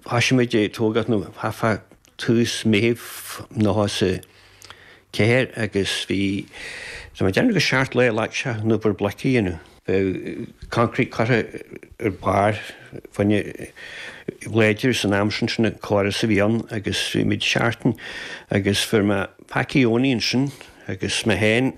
Thoisigh muid ag tógáil nó thart fá tús Meithimh nócha a ceathair agus bhí, tá mé ag déanamh gur seacht lá a ghlac sé an obair bloic a dhéanamh. Eh concrete curtha ar barr fáinne a ghlaoitear san am sin sin an córas a bhí ann agus bhí muid seachtain agus fuair mé Packie Owenie ansin agus mé féin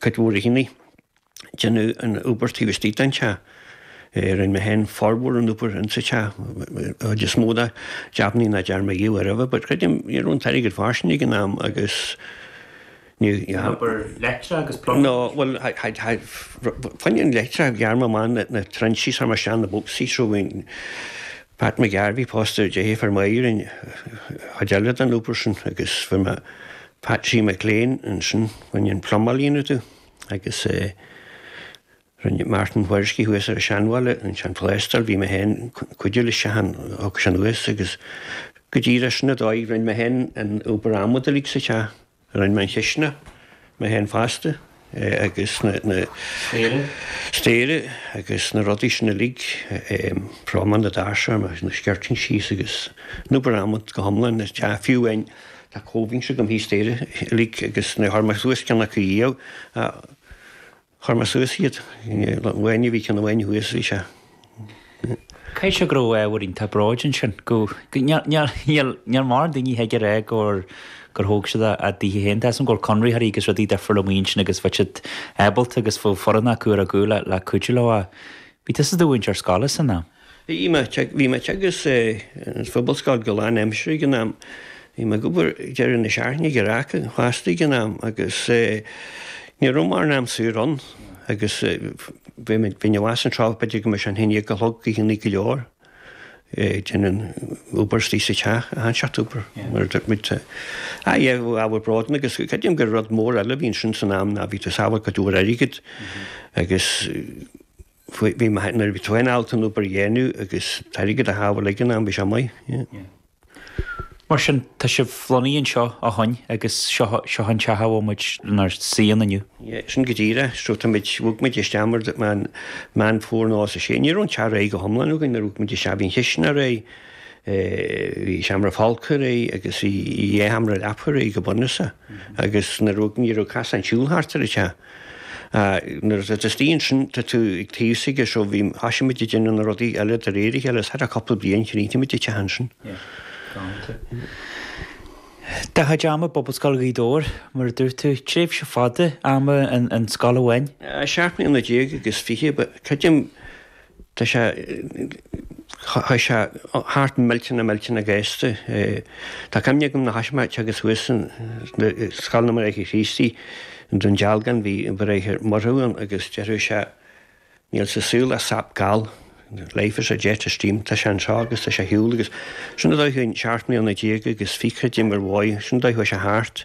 Cuid mhór a shíneadh. Déanamh an obair taobh istigh den teach. Rinne mé féin formhór an obair ins an teach, an chuid is mó de. D'ainneoin nach dearn mé é aroimhe but creidim ní raibh an t-airgead fairsing ag an am agus ní. An obair leictreach agus plumbing? No, bhuel, fá choinne an leictreach ghearr mé amach na trenches chuir mé isteach na bocsaí, rinne Pat McGarvey pósta ar dheirfiúr Mháirín an chuid eile den obair sin agus fuair mé Patsy McLean, ansin fá choinne an plumáil a dhéanamh domh agus rinne Martin Whoriskey thuas ar an Seanbhaile ansin an plástráil, bhí mé féin ag cuidiú leis a shon, thug sin thuas agus go díreach sin an dóigh, rinne mé féin an obair adhmad uilig sa teach, rinne mé an chistineach mé féin fosta. agus na staighre agus na rudaí sin uilig, frámaí na ndoirse agus na skirting síos agus an obair adhmad go hiomlán sa teach, fiú amháin tá covings agam thíos staighre uilig agus níor chuir mé suas ceann acu riamh, chuir mé suas iad, nuair a bhí ceann amháin thuas, bhí sé. Caithfidh sé go raibh ábhar iontach bróid ansin. Níl mórán daoine a thig a rá gur thóg siad a dteach féin. Tá 'fhios a'm go bhfuil conraitheoirí agus rudaí difriúla amuigh ansin agus bheadh siad ábalta agus bheadh foireann acu ar a gcúl le cuidiú leo. Bhí tusa i do mhúinteoir scoile san am? Bhí mé, bhí mé agus eh an phobalscoil go lán aimsire ag an am. Bhí mé ag obair deireadh na seachtaine ag Earrac fosta ag an am agus eh ní raibh mórán am saor ann agus eh Bhí muid, bhí Neasa an tráth, b'fhéidir go mbeadh sé a haon déag a chlog oícheannaí go leor. Ag déanamh obair istigh sa teach, achan seort obair mar a dúirt muid. A fhad le ábhar bróid ann agus creidim gur rud mór eile a bhí ansin san am ná bhí tú ag sábháil cuid mhór airgead agus bhí, nuair a bhí tú féin ábalta an obair a dhéanamh agus an t-airgead a shábháil ag an am bhí sé maith. Mar sin, tá sibh lonnaithe anseo ó shoin agus seo an teach a bhfuil muid inár suí ann inniu. Yeah, sin go díreach. So tá muid, bhog muid isteach mar a déarfá Meán Fómhair 96. Ní raibh an teach réidh go hiomlán againn nuair a bhog muid isteach. Bhí an chistineach réidh, bhí seomra folctha réidh agus bhí dhá sheomra leapacha réidh go bunúsach. Agus nuair a bhog, ní raibh cosán siúil thart ar an teach. Nuair atá tú istigh ansin, tá tú ag taobh s'aige seo, bhí, thoisigh muid ag déanamh na rudaí eile de réir a chéile, is thar cúpla bliain chríochnaigh muid an teach ansin. Do chuid ama i bPobalscoil Ghaoth Dobhair, mar a dúirt tú, tréimhse fada ama in scoil amháin. Seacht mbliana déag agus fiche, creidim. Tá sé, chuaigh sé thart millteanach millteanach gasta. Tá cuimhne agam ná haois, a Mháirt agus thuas in Scoil na mBráithre Chríostaí in Dún Dealgán, bhí an Bráthair Murchadh ann agus deireadh sé níl sa saol ach seap gail, life is a jet of steam, tá sé anseo agus tá sé ar shiúl agus sin an dóigh a chuaigh na, seacht mbliana déag agus fiche, d'imigh, bhuel, sin an dóigh a chuaigh sé thart.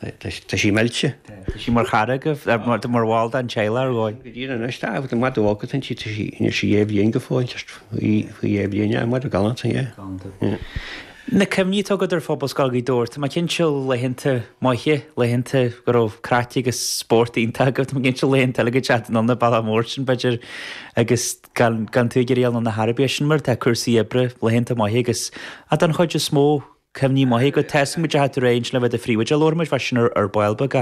Tá sí millte. Tá sí mar chara agaibh, mar bhall den teaghlach ar dhóigh. Go dtí anois tá, agus an madadh óg aici, tá sí, níl sí dhá bhliain go fóill, just faoi dhá bhliain é, madadh galánta, yeah. Galánta. Yeah. Na cuimhní atá agat ar Phobalscoil Ghaoth Dobhair, tá mé cinnte laethanta maithe, laethanta go raibh craic agus spórt iontach agat, tá mé cinnte laethanta eile go dtáinig tú chun an bhaile ansin b'fhéidir agus gan tú go rialánta ar bith, sin mar tá cúrsaí oibre laethanta maithe agat don chuid is mó Cuimhní maithe, go ndeachaigh tú ar aghaidh ansin le bheith i do phríomhoide, labharfaidh muid fá sin ar ball beag.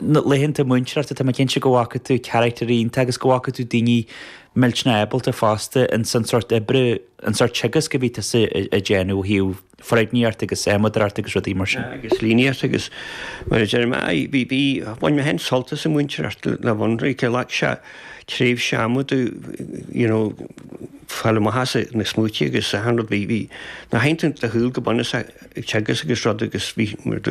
Na laethanta múinteoireachta tá mé cinnte go bhfaca tú carachtair iontach agus go bhfaca tú daoine millteanach ábalta fosta ins an sórt oibre, an sórt teagasc a bhí tusa ag déanamh ó thaobh foirgníocht agus adhmadóireacht agus rudaí mar sin. agus líníocht agus mar a deir mé, bhí, bhí, bhain mé féin sult as an mhúinteoireacht le bheith ionraic leat, sea, tréimhse ama do, you know, Fá mhaitheasa na smaointí agus achan rud. Bhí na haoinne de shiúl go bunúsach ag teagasc agus rud agus bhí